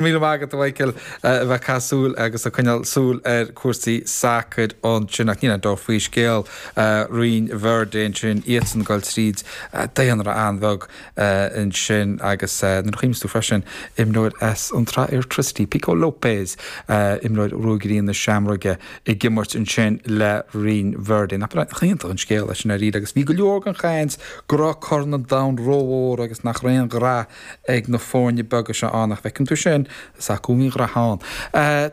Míle maith agat, a Mhichael, a bheith ag caitheamh súil agus ag coinneáil súil ar chúrsaí sacair ansin, ach níl aon dabht faoi scéal Rinn Verde ansin, iadsan ag dul tríd daonra an-bheag ansin agus nuair a chuimhníos tú freisin, imreoir as an tSraith Airtricity, Pico Lopes, imreoir Ruagairí na Seamróige ag imirt ansin le Rinn Verde. Nach iontach an scéal é sin dháiríre agus bhí go leor den chaint go raibh Corn an Domhain rómhór agus nach raibh aon ghraithe ag na foirne beaga seo ann, ach feiceann tú sin, is acu a bhí graithe ann.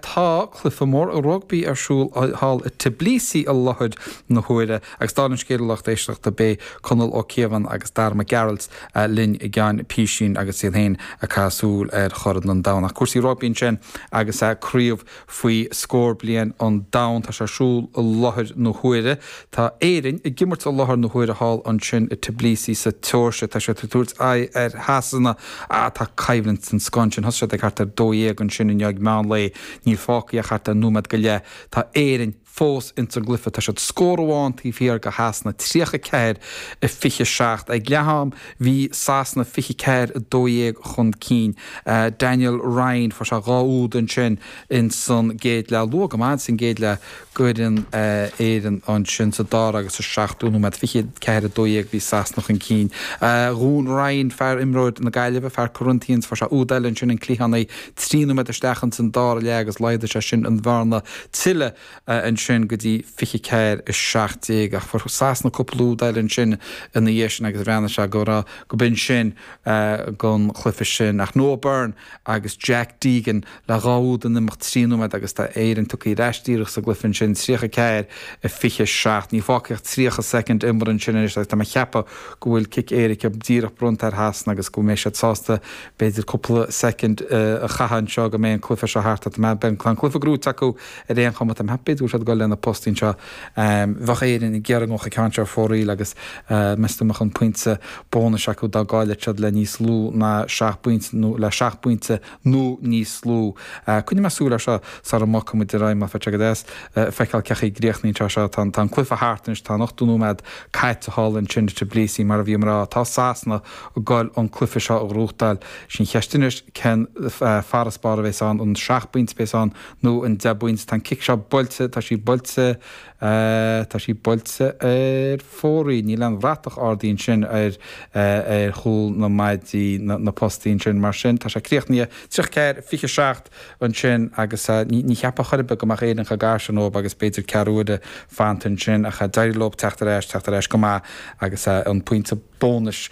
Tá cluiche mór rugbaí ar siúl thall i Tbilisi i láthair na huaire agus dála an scéil, a lucht éisteachta, beidh Conall Ó Cíobháin agus Darragh Mac Gearailt linn i gceann písín agus iad féin ag caitheamh súil ar Chorn an Domhain. Ach cúrsaí rugbaí ansin agus craobh Faoi scór bliain an domhain, tá sé ar siúl i láthair na huaire. Tá Éirinn ag imirt i láthair na huaire thall ansin i Tbilisi sa tSeoirsia. Tá siad ag tabhairt aghaidh ar Shasana. Ah, tá coimhlint den scoth ansin. Thosaigh siad ag thart ar dó dhéag ansin i ndiaidh meán lae. Níl fágtha ach thart ar nóiméad go leith. Tá Éirinn. fós ins an gcluiche. Tá siad scór amháin taobh thiar go Shasana, 34 i 27. Ag leath-am bhí Sasana 24 i 12 chun cinn. Daniel Ryan, fuair sé dhá úd ansin ins an gcéad leath. Luath go maith ins an gcéad leath d'fhoireann Éireann ansin. Sa dara agus sa seachtú nóiméad, 24 i 12, bhí Sasana chun cinn. Dhún Ryan, fear, imreoir na Gaillimhe, fear Corinthians, fuair sé úd eile ansin, an cliathánaí, trí nóiméad isteach ins an dara leath agus laghdaigh sé sin an bhearna tuilleadh ansin go dtí 24, 17 ach fuair Sasana cúpla úd eile ansin ina dhiaidh sin agus bhreathnaigh sé go raibh, go b'in sin gon chluiche sin. Ach Noah Byrne agus Jack Deegan le dhá úd in imeacht trí nóiméad agus tá Éirinn tagtha ar ais díreach sa gcluiche ansin, 34, 27. Níl fágtha ach 30 soicind imeartha ansin anois agus tá mé a cheapadh go bhfuil cic éirice díreach bronnta ar Shasana agus go mbeidh siad sásta B'fhéidir cúpla soicind a chaitheamh anseo go mbeidh an cluiche seo thart, ach beidh an cluiche grúite acu ar aon chuma. Tá mé thart, b'fhéidir go bhfuil siad ag dul le haghaidh na postaí anseo. Bheadh Éirinn ag iarraidh go ngabhfadh an ceann seo ar fóraoil agus meastar go mbeadh an pointe bónais acu dá gcaillfeadh siad le níos lú ná seacht bpointe nó le seacht bpointe nó níos lú. Coinneoidh mé súil air seo sara mbogfaimid ar aghaidh mar bheadh sé go deas feiceáil cé chaoi a gcríochnaíonn sé seo. Tá an cluiche thart anois, tá an ochtó nóiméad caite thall ansin i Tbilisi, mar a bhíomar a rá. Tá Sasana ag dul an cluife seo a ghrúchtáil. Sí an cheist anois, cén farasbarr a bhéas ann, an seacht bpointe a bhéas ann nó an deich bpointe. Tá an cic seo buailte, tá sí buailte, tá sí buailte ar fóraoil. Níl aon bhratach ardaithe ansin ar chúl na maidí, na postaí ansin. Mar sin, tá sé críochnaithe. Tríocha ceathair, fiche seacht ansin agus ní cheapfá chor ar bith go mbeadh Éirinn chomh gar sin dhóib agus b'fhéidir ceathrú uaire fanta ansin ach d'éirigh leob teacht ar ais, teacht ar ais go maith agus an pointe. bónais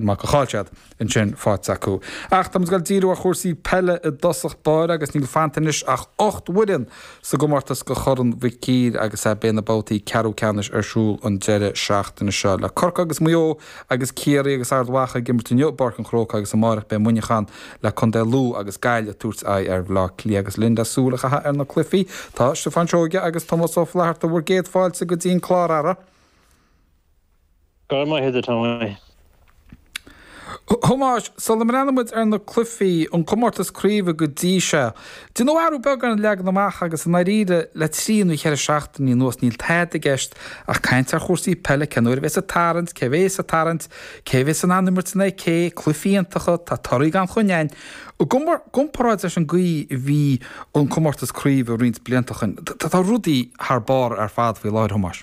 mar go chaill siad ansin faic acu. Ach tá muid ag dul díriú ar chúrsaí peile i dtosach báire agus níl fanta anois ach ocht bhfoireann sa gcomórtas do Chorn Mhic Uidhir agus beidh na babhtaí ceathrú ceannais ar siúl an deireadh seachtaine seo le Corcaigh agus Maigh Eo agus Ciarraí agus Ard Mhacha ag imirt inniu i bPáirc an Chrócaigh agus amáireach beidh Muineachán le contae Lú agus Gaillimh ag tabhairt aghaidh ar Bhleá Cliath agus linn le súil a chaitheamh ar na cluichí tá Stiofán Seoige agus Tomás Ó Flatharta bhur gcéad fáilte go dtí an clár ara Go raibh maith agat Tommy. Thomáis, sula mbreathnóidh muid ar na cluifí, an comórtas craoibhe go dtí seo, déanadh athrú beag ar an leagan amach agus i ndáiríre le trí nó cheithre seachtainí anuas níl tada i gceist ach caint ar chúrsaí peile, cén uair a bheas an tarraingt, cé a bheas sa tarraingt, cé a bheas in ann imirt in aghaidh cé, cluifí iontacha, torthaí gan choinne againn i gcomparáid leis an gcaoi a bhí an comórtas craoibhe roinnt blianta ó shin. Tá rudaí thar barr ar fad faoi láthair, Thomáis.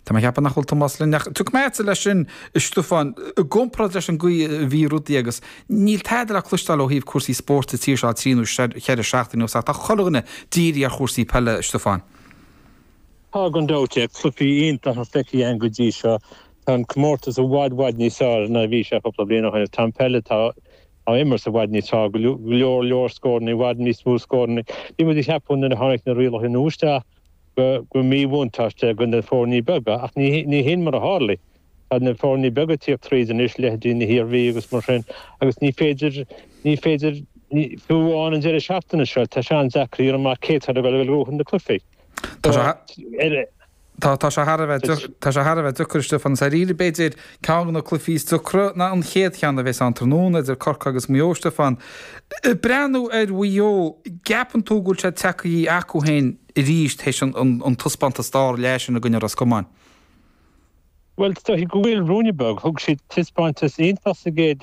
Tá mé ag ceapadh nach bhfuil Tomás linn, ach tiocfaidh mé agatsa leis sin, a Stiofáin. I gcomparáid leis an gcaoi a bhí rudaí agus níl tada le cloisteáil ó thaobh cúrsaí spóirt sa tír seo le trí nó cheithre seachtaine anuas, ach tá chuile dhuine dírithe ar chúrsaí peile, a Stiofáin. Tá, gan dabht, ach cluichí iontacha feicthe agam go dtí seo. Tá an comórtas i bhfad, bhfad níos fearr ná a bhí sé cúpla bliain ó shin, agus tá an peil atá á imirt i bhfad níos fearr, go leor leor scóranna, i bhfad níos mó scóranna. Bhí muid ag ceapadh nuair a tháinig na rialacha nua isteach go raibh míbhuntáiste do na foirní beaga ach ní hin mar a tharlaigh. Tá na foirní beaga ag tíocht tríd anois, leithéidí na hIarmhí agus mar sin, agus ní féidir, ní féidir, fiú amháin an deireadh seachtaine seo, tá sé an-deacair a dhéanamh amach cé atá le dul ag buachan na cluifí. Tá sé thar a bheith, tá sé thar a bheith deacair, Stiofán, is dáiríre, b'fhéidir, ceann de na cluifí is deacra ná an chéad cheann a bhéas ann tráthnóna idir Corcaigh agus Maigh Eo, Stiofán. Ag breathnú ar Mhaigh Eo, gceapann tú go bhfuil siad tagthaí chucu féin arís théis an taispeántas tarraleá sin i gcoinne Ros Comáin? Bhuel, is dóichí go bhfuil, ruainne beag. Thug siad taispeántas iontach sa gcéad leath.